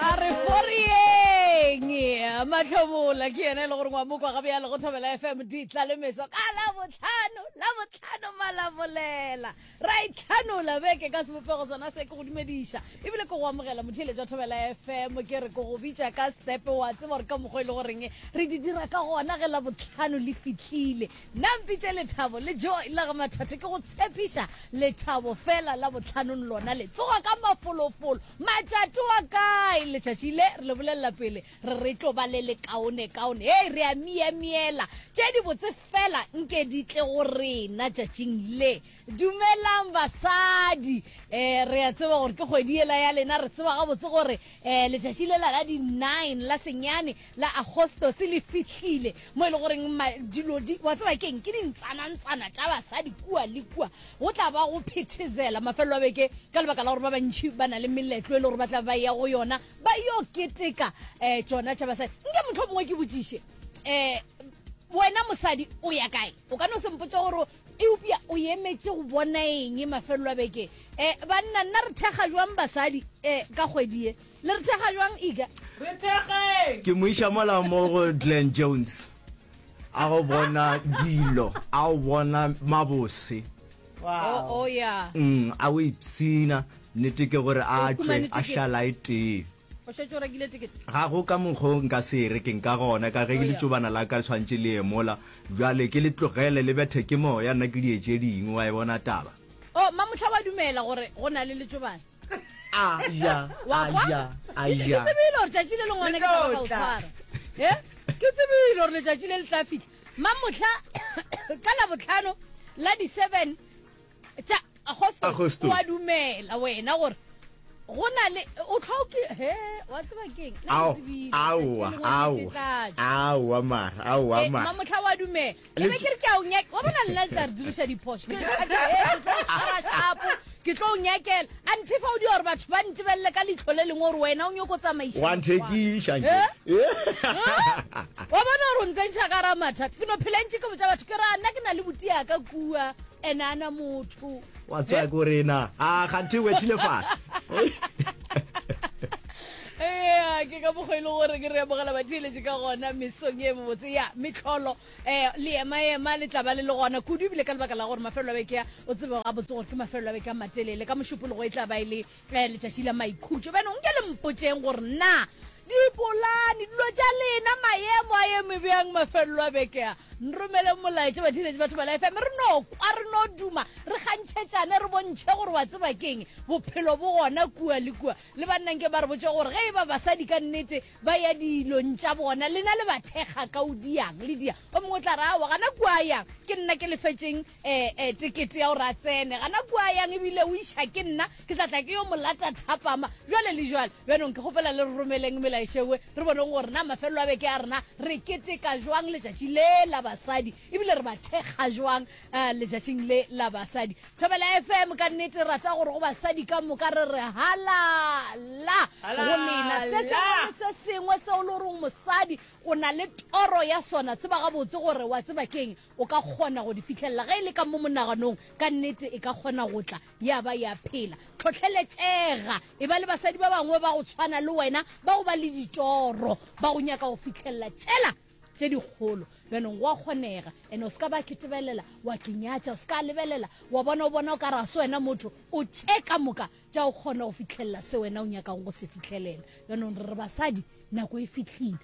a re forieng mahlomola ke yena e le gore ngwa mokwa gabe ya lego thobela fm di tla le meso ka la botlhano la botlhano malabolela ra itlhanola beke ka sebopego sona se ke go dumediša ebile ke go amogela motheeletša jwa thobela fm ke re ke go bitša ka stepe wa tseba gore ka mokgwa e le goreng re di dira ka gona ge la botlhano le fitlhile Na mpitše Lethabo le Joy la ga Mathathe ke go tshepiša Lethabo fela la botlhanong lona le tsoga ka mafolofolo matšati wa kae letšatši le re le bolelela pele re re tlo ba le lekaone kaone hei re a miemiela tše di botse fela nke di tle go rena tšatšing le Dumelang basadi. Eh, re a tseba gore ke kgwedi yela ya lena, re tseba gabotse gore eh, letšatši lela la di-nine la senyane la Agostos le fihlile mo e le goreng ma- dilo di wa tseba keng ke dintsanantsana tša basadi kua le kua go tla ba go phethezela mafelelo a beke ka lebaka la gore ba bantšhi ba na le meletlo e le gore ba tla ba ya go yona ba yo keteka um tšona tša basadi nke motlho mongwe ke botšiše um wena mosadi o ya kae o ka no sempotsa gore eupša o emetše go bona eng mafelelo a beke um banna nna re thekga jwang basadi um ka kgwedi ye le re thekga jwang ika re thekgeng ke moiša mola mo go glen jones a go bona dilo a go bona mabose o ya mm, a o ipshina nnete ke gore a tšwe a šala e tee o šetše o rekile ticket ga go ka mokgo nka se e rekeng ka gona ka ge ke letšobana la ka le tshwantše le emola bjale ke le tlogele le bethe ke moya nna ke di etse dingwe wa e bona taba o oh, mamotlha wa dumela gore go na le letšobana aya aya aya ke tsebile gore tšatši le lengwane ke taba ka o tshwara e ke tsebile gore letšatši le le tla fitlha mamotlha ka labotlhano la di-seven tša agosto wa dumela wena gore go na le o tlhoke he wa tseba keng aowa aowa mara aowa eh, mara mamotlha wa dumela ke be ke re ke a o nyaka wa bona nna le tla re diriša diphoso ke tshwara shapo ke tlo o nyakela a nthe fa o di gore batho ba ntebelele ka leitlho le lengwe gore wena o nyoko tsamaisawanthekiša eh? eh? wa bona gore o ntse ntšha ka ra mathata ke no phela ntše ke botsa batho ke ra nna ke na le botiaka kua enana motho wa tswa go rena a ganthe we tsile fast ee ke ka mokgwa e le gore ke re amogela batheeletše ka gona mesong e mobotse ya metlholo um eh, leemaema le tlaba le le gona kudu ebile ka lebaka la gore mafelo a beke ya o tsebe ga botse gore ke mafelo a beke a matelele ka mošupologo e tla ba e le Ge letšatši la maikhutšo, bjale nke le mpotšeng gore na dipolane, dilo tša lena, maemo a eme bjang mafelelo a beke a. Nromeleng molaetša, batheeletši, batho ba la FM, re no kwa, re no duma, re kgantšhetšane, re bontšhe gore wa tseba ke'ng, bophelo bo gona kua le kua. Le banna nke ba re botše gore ge e ba basadi ka nnete ba ya dilong tša bona, lena le ba thekga ka o diang, le dia. O mongwe o tla re, Aowa, gana kua a yang, ke nna ke lefetšeng E-e, tekete ya gore a tsene gana kua yang, ebile o iša ke nna, ke tla tla ke yo molata thapama. Bjale le bjale, bjanong ke kgopela le re romeleng melaešewe re boneng gore na mafelelo a beke a rena re keteka bjang letšatši le la basadi, ebile re ba thekga bjang letšatšing le la basadi. Thobela FM, ka nnete rata gore go basadi ka moka re re halala go lena. Se sengwe le se sengwe seo le goreng mosadi o na le toro ya sona, tseba gabotse gore wa tseba keng, O ka kgona go di fihlelela ge e le ka mo monaganong. Ka nnete, e ka kgona go tla ya ba ya phela. Tlhohleletšega. E ba le basadi ba bangwe ba go tshwana le wena bao ba le ditoro, ba go nyaka go fihlelela tšela tše dikgolo. Bjanong, go a kgonega. And o se ka ba ke tebelela wa ke nyatša. O se ka lebelela wa bona o bona o ka re ga se wena motho. O tše ka moka tša go kgona go fihlelela se wena o nyakago go se fihlelela. Bjanong, re re basadi, nako e fihlile.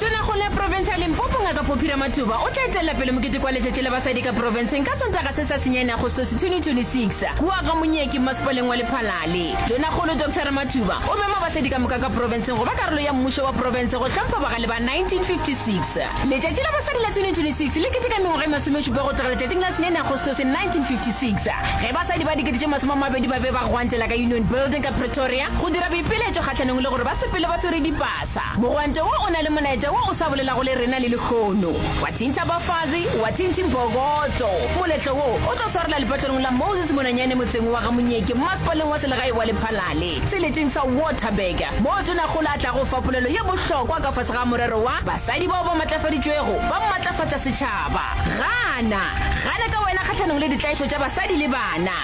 Tonakgolo ya profense ya Limpopo Ngaka Poppy Ramathuba o tla etelela pele mokete kwa Letšatši la Basadi ka Profenseng ka Sontaga se sa senyane Agostose 2026 kua ga Monyeki Mmasepaleng wa Lephalale. Tonakgolo Doctor Ramathuba o mema basadi ka moka ka profenseng go ba karolo ya mmušo wa profense go hlompha bagale ba 1956. Letšatši la Basadi la 2026 le keteka mengwaga e masomešupa go tloga letšatšing la senyane Agostose 1956 ge basadi ba dikete tše masome a mabedi ba be ba gwantela ka Union Building ka Pretoria go dira boipiletšo kgahlanong le gore ba sepele ba swere dipasa Sa. Mogwante wo o na le molaetša wo o sa bolelago le rena le lehono. Wa thintha Bafazi, wa thinthi Mpokoto. Moletlo wo o tlo swarela lepatlelong la Moses Monanyane motseng wa ga Monyeki mmasepaleng wa selegae wa Lephalale, seleteng sa Waterberg, moo Tonakgolo a tlago fa polelo ye bohlokwa ka fase ga morero wa Basadi bao ba matlafaditšwego ba matlafatša setšhaba. Gana! Gana ka wena kgahlanong le ditlaišo tša basadi le bana!